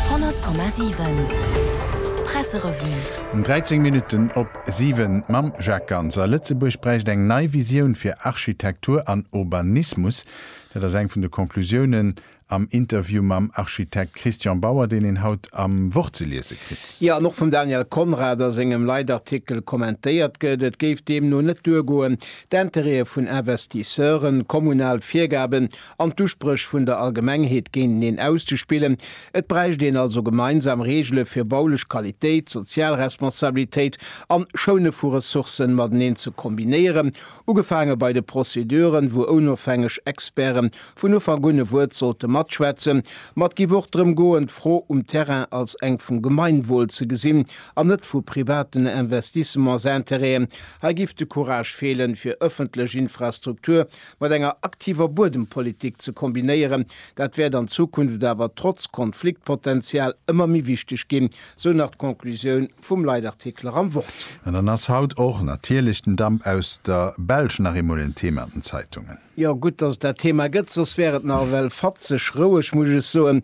100,7 Presserevue. Um 13 Minutten op 7 mam Jacques Ganser. Lëtzebuerg bräicht eng nei Visioun fir Architektur an Urbanismus. Dat ass eng vun de Conclusiounen am Interview mam Architekt Christian Bauer, deen een haut am Wort ze liese kritt. Jo, an och vum Daniel Conrad a sengem Leitartikel kommentéiert gëtt. Et géif deemno net duergoen, d'Intérêtë vun Investisseuren, kommunal Virgaben an d'Uspréch vun der Allgemengheet géinteneen auszespillen. Et bräicht een also gemeinsam Reegele fir baulech Qualitéit, sozial Responsabilitéit an Schoune vu Ressourcen mateneen ze kombinéieren, ugefaange bei de Prozeduren, wou onofhängeg Experten vun Ufank un e Wuert sollte matschwätzen. Ma et géif och drëm goen, d'Fro um Terrain als eng vum Gemeinwohl ze gesinn an net vu privaten Investissementsintérêten. Hei géif de Courage feelen, fir ëffentlech Infrastruktur mat enger aktiver Buedempolitik ze kombinéieren, dat wäert an Zukunft awer trotz Konfliktpotential ëmmer méi wichteg ginn, sou nach d'Conclusioun vum Leitartikel och am Wort. An dann ass haut och natierlech den Damp aus der Belsch nach eemol en Thema an den Zeitungen. Jo, gutt, dass et dat Thema gëtt, soss wär et nach ewell fatzeg roueg, muss ech soen.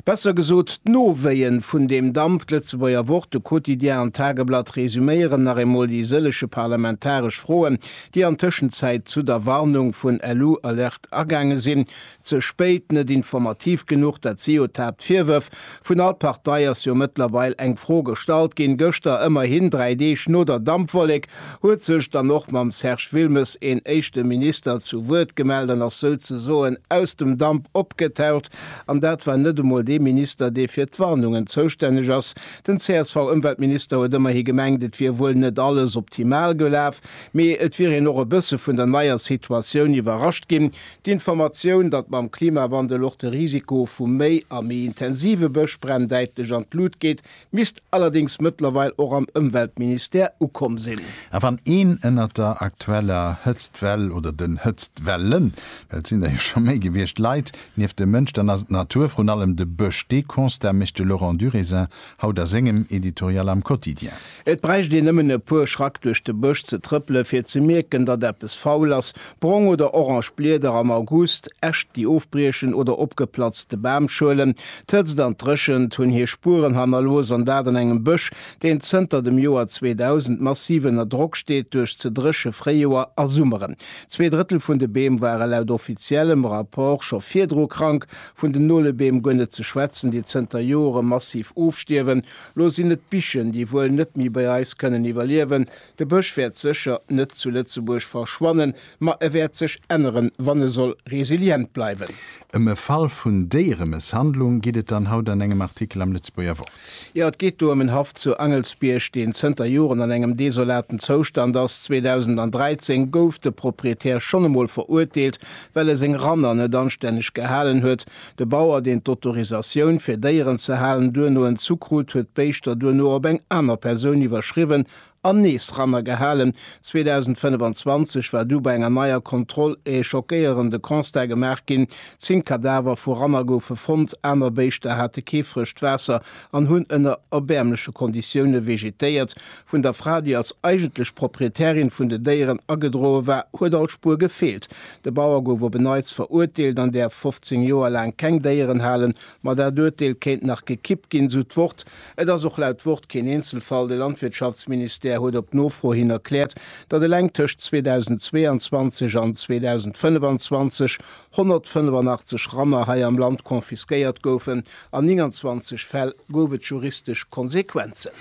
Besser gesot, d'Nowéie vun deem Damp. D'Lëtzebuerger Wort, de Quotidien an d'Tageblatt resuméieren nach eemol déi sëllege parlamentaresch Froen, déi an Tëschenzäit zu der Warnung vun LU Alert agaange sinn, ze spéit, net informativ genuch, dat si jo d'Haaptvirwërf. Vun all Partei ass jo mëttlerweil eng Fro gestallt ginn. Gëschter, ëmmerhin dräi Deeg no der Dampwollek, huet sech dann och mam Serge Wilmes een éischte Minister zu Wuert gemellt an ass souzesoen aus dem Damp opgetaucht. An dat war net emol dee Minister, dee fir d'Warnungen zoustänneg ass. Den CSV-Ëmweltminister huet ëmmerhi gemengt, et wier wuel net alles optimal gelaf. Mee et wier een och e bësse vun der neier Situatioun iwwerrascht ginn. D'Informatioun, datt mam Klimawandel och de Risiko vu méi a méi intensive Bëschbränn däitlech an d'Lut geet, misst allerdéngs mëttlerweil och am Ëmweltministère ukomm sinn. A wann een ënnert der aktueller Hëtztwell oder den Hëtztwellen, well et sinn der jo scho méi gewiescht, leit, nieft dem Mënsch, dann ass et d'Natur, vrun allem de Bësch. Dee Constat mécht de Laurent Durésin haut a sengem Editorial am Quotidien. Et bräicht een nëmmen e puer Schrack duerch de Bësch ze trëppelen, fir ze mierken, datt eppes faul ass, brong oder orange Blieder am August, Äscht, déi ofbriechen, oder opgeplatzte Bamschuelen. D'Hëtzt an d'Dréchent hunn hir Spueren hannerlooss, an dat an engem Bësch, deen zënter dem Joer 2000 massiv ënner Drock steet duerch ze dréche Fréijoer a Summeren. Zwee Drëttel vun de Beem ware laut offiziellem Rapport scho virdru krank, Vun den Nolebeem guer net ze schwätzen, déi zënter Jore massiv ofstierwen. Lo sinn et d'Bichen, déi wuel net méi bei eis kënnen iwwerliewen. De Bësch wäert sécher net zu Lëtzebuerg verschwannen, ma e wäert sech änneren, wann e soll resilient bleiwen. Ëm e Fall vun Déieremësshandlung geet et dann haut an engem Artikel am Lëtzebuerger Wort. Jo, et geet do ëm en Haff zu Angelsbierg, deen zënter Joren an engem desolaten Zoustand ass. 2013 gouf de Proprietär schonn emol verurteelt, well e seng Ranner net anstänneg gehalen huet, de Bauer, deen d'Autorisatioun fir Déieren ze halen, duerno entzu krut, huet d'Béischter duerno op eng aner Persoun iwwerschriwwen an nees Ranner gehalen. 2025 war du bei enger neier Kontroll e schockéierende Constat gemaach ginn, Zéng Kadaver vu Ranner goufe fonnt, aner Béischter hate kee frëscht Waasser an hunn ënner erbäermleche Konditioune vegetéiert, Vun der Fra, déi als eigentlech Proprietärin vun de Déieren agedroe war, huet all Spuer gefeelt. De Bauer gouf op en Neits verurteelt an däerf 15 Joer laang keng Déieren halen. Ma dat Urteel kéint nach gekippt ginn, sou d'Wort. Et ass och laut Wort keen Eenzelfall. De Landwirtschaftsministère huet op Nofro hin erkläert, datt eleng tëscht 2022 an 2025 185 Ranner hei am Land confisquéiert goufen. An 29 Fäll gouf et juristesch Konsequenzen.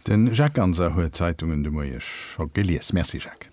Den Jacques Ganser huet d'Zeitungen de Moie scho gelies. Merci Jacques.